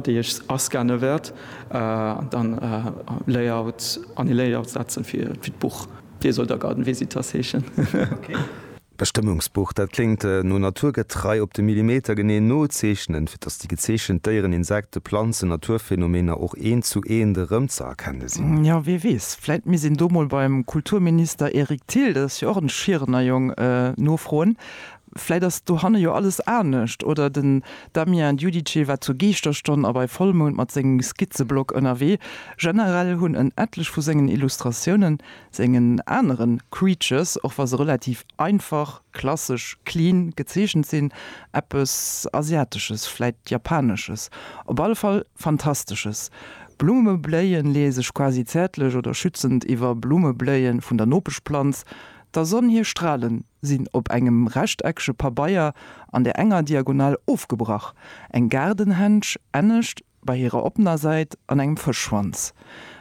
déi ech ascanne wäert an dann Layout an e Layout setzen fir d'Buch. Dee soll da Garden Visitors heeschen. Bestëmmungsbuch, dat kléngt no naturgetrei op de Millimeter genee nozeechnen, fir datt déi gezeechent Déieren, Insekten, Planzen, Naturphänomener och eent zu eent erëmzëerkenne sinn. Jo, wee weess, vläit misst een do mol beim Kulturminister Eric Thill, dat ass jo och en Schierener Jong, nofroen. Vläit ass dohanne jo alles anescht, oder? Den Damien Giudice war zur Geeschterstonn a bei Vollmound mat sengem Skizzeblock ënnerwee. Generell hunn en etlech vu sengen Illustratiounen sengen aneren Creatures, och wa se relativ einfach, klassesch, clean gezeechent sinn, eppes Asiatesches, vläit Japanesches, op alle Fall Fantastesches. Blumme bléien leeë sech quasi zäertlech oder schützend iwwer Blumme bléie vun der Nopeschplanz der Sonn hir Stralen sinn op engem rechteckege Pabeier an der enger Diagonal ofgebrach, eng Gaardenhändsch ennescht bei hirer oppener Säit an engem Fëschschwanz.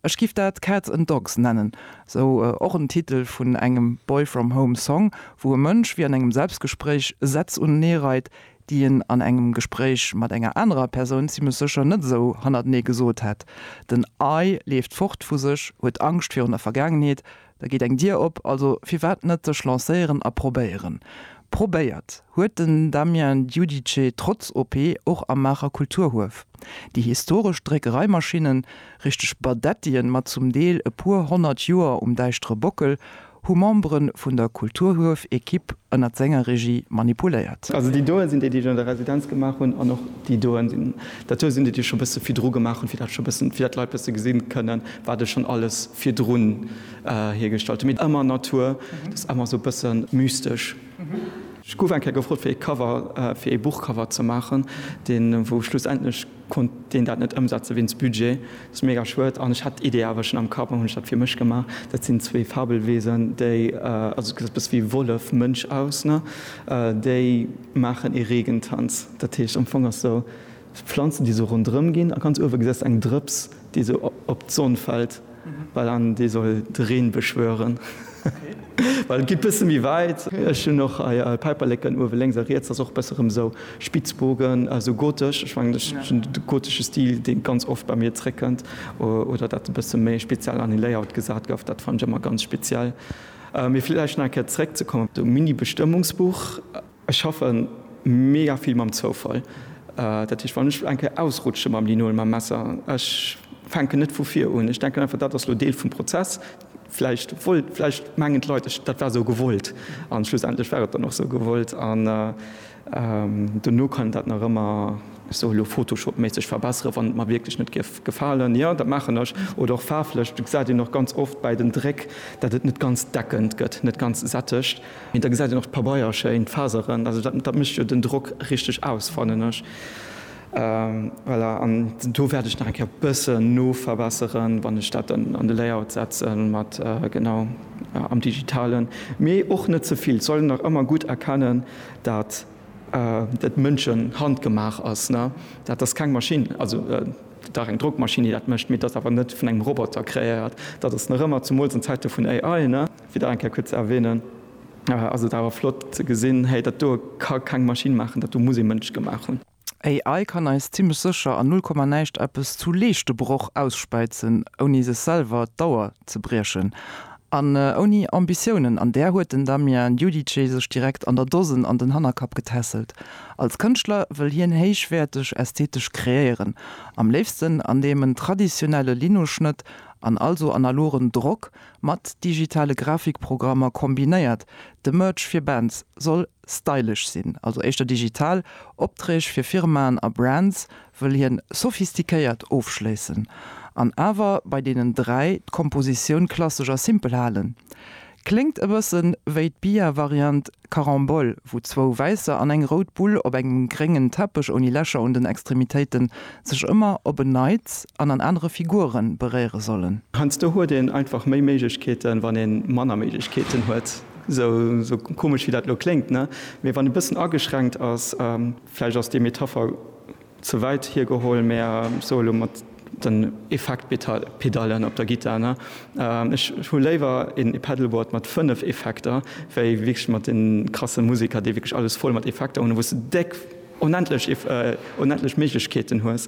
Ech giff dat Cats and Dogs nennen, sou och en Titel vun engem Boy From Home Song, wou e Mënsch wéi an engem Selbstgespréich Sätz unenee reit, déi en an engem Gespréich mat enger anerer Persoun zimmlech sécher net esou hannertenee gesot hätt. Den I leeft fort vu sech, huet Angscht virun der Vergaangenheet, Da geet eng Dier op, also firwat net sech lancéieren a probéieren. Probéiert huet den Damien Giudice trotz OP och am Maacher Kulturhuef. Déi historesch Dréckereimaschinnen, richteg Badettien mat zum Deel e puer honnert Joer um däischtere Bockel, hu Membere vun der Kulturhuef-Ekipp ënnert senger Regie manipuléiert. Also déi doe sinn déi, déi ech an der Residenz gemaach hunn an och déi doe sinn, dat doe sinn déi, déi ech scho bësse virdru gemaach hunn, fir dat scho bëssen, fir dat d'Leit bësse gesinn kënnen, wat ech schon alles virdrun hiergestallt hun, mee ëmmer Natur, dat ass ëmmer sou bëssen mystesch. Ech guff eng Kéier gefrot fir ee Cover, fir ee Buchcover ze maachen, deen wou schlussendlech konnt deen dat net ëmsetzen wéinst Budget, dat ass mega schued, an ech hat d'Idee awer schon am Kapp an hun ech dat fir mech gemaach. Dat sinn zwee Fabelwesen, déi, also gesäit bësse wéi Wollef Mënsch aus, ne, déi maachen ee Regentanz, dat heescht am Fong ass sou Pflanzen déi sou rondrëm gin a ganz uewe gesest eng Drëps déi sou op d'Sonn fällt well an déi soll de Reen beschwören well et gin bëssen méi weit. Ech hun och hei Päiperleken uewe lénks a riets ass och bëssen rëm sou Spitzbogen sou gotesch. Ech mengen ech hun de gotesche Stil dee ganz oft bei mir zréck kënnt oder dat e bëssen méi speziell an e Layout gesat gëff. Dat fannen ech ëmmer ganz speziell. Mee villäicht nach eng Kéier zréck ze kommen op de Mini-Bestëmmungsbuch. Ech schaffe mega vill mam Zoufall. Dat heescht, wann ech eng Kéier ausrutsche mam Linol, mam Messer, ech fänken net vu vir un. Ech denken einfach, dat ass elo Deel vum Prozess. Vläicht wollt, vläicht mengen d'Leit, ech, dat war esou gewollt. A schlussendlech war et dann och esou gewollt. An dono kann een dat nach ëmmer, ech soen elo Photoshop-méisseg, verbesseren, wann et mer wierklech net géif gefalen. Jo, dat maachen ech. Oder och faarflech, dat gesäit een och ganz oft bäi den Dréck, dat et net ganz deckend gëtt, net ganz sättegt. Mee da gesäit een och d'Pabeier schéin, d'Faseren, also dat dat mécht jo den Drock richteg aus, fannen ech. Voilà, an do wäert ech nach eng Kéier e bëssen noverbesseren, wann ech dat dann an de Layout setzen mat, genau, am Digitalen. Mee och net ze vill, et soll een nach ëmmer gutt erkennen, dat et Mënschen handgemaach ass, ne. Dat ass keng Maschinn, also dach eng Drockmaschinn, déi dat mécht, mee et ass awer net vun engem Roboter kreéiert. Dat ass nach ëmmer, zumools an Zäite vun AI, ne. Wieder eng Kéier kuerz ze erwähnen, ass et awer flott ze gesinn, hey, dat do ka keng Maschinn maachen, dat do muss ee Mënsch gemaach hunn. AI kann eis zimmlech sécher an null Komma näischt eppes zu Leeschtebroch ausspäizen, ouni sech selwer d'Auer ze briechen an ouni Ambitiounen. An där huet den Damien Giudice sech direkt an der Dosen an den Hannerkapp getässelt. Als Kënschtler wëll hien héichwäerteg ästhetesch kreéieren, am léifsten andeem en traditionelle Linoschnëtt an also analogen Drock Mat digitale Grafikprogrammer kombinéiert. De Merch fir Bands soll stylesch sinn, also éischter digital. Opträg fir Firmaen a Brands wëll hien sophistiquéiert ofschléissen an awer bei deenen dräi d'Kompositioun klassesch a simpel halen. Kléngt e bëssen wéi d'Bia-Variant Carambole, wou zwou wäisser an eng rout Bull op engem gréngen Teppech ouni Lächer un den Extremitéiten sech ëmmer op en Neits an an anere Figure beréiere sollen. Heiansdo huet een einfach méi Méiglechkeeten, wann ee manner Méiglechkeeten huet. Esou komesch wéi dat elo kléngt, ne? Mee wann e bëssen ageschränkt ass, vläicht ass déi Metapher. Ze wäit hiergeholl, mä so elo mat den Effektpedallen op der Gittar, ne? Ech hu léiwer een e-Pedalboard mat 5 Effekter, wéi wierklech mat den krasse Musiker, déi wierklech alles voll mat Effekter hunn, wou s de déck, onendlech, onendlech Méiglechkeeten hues.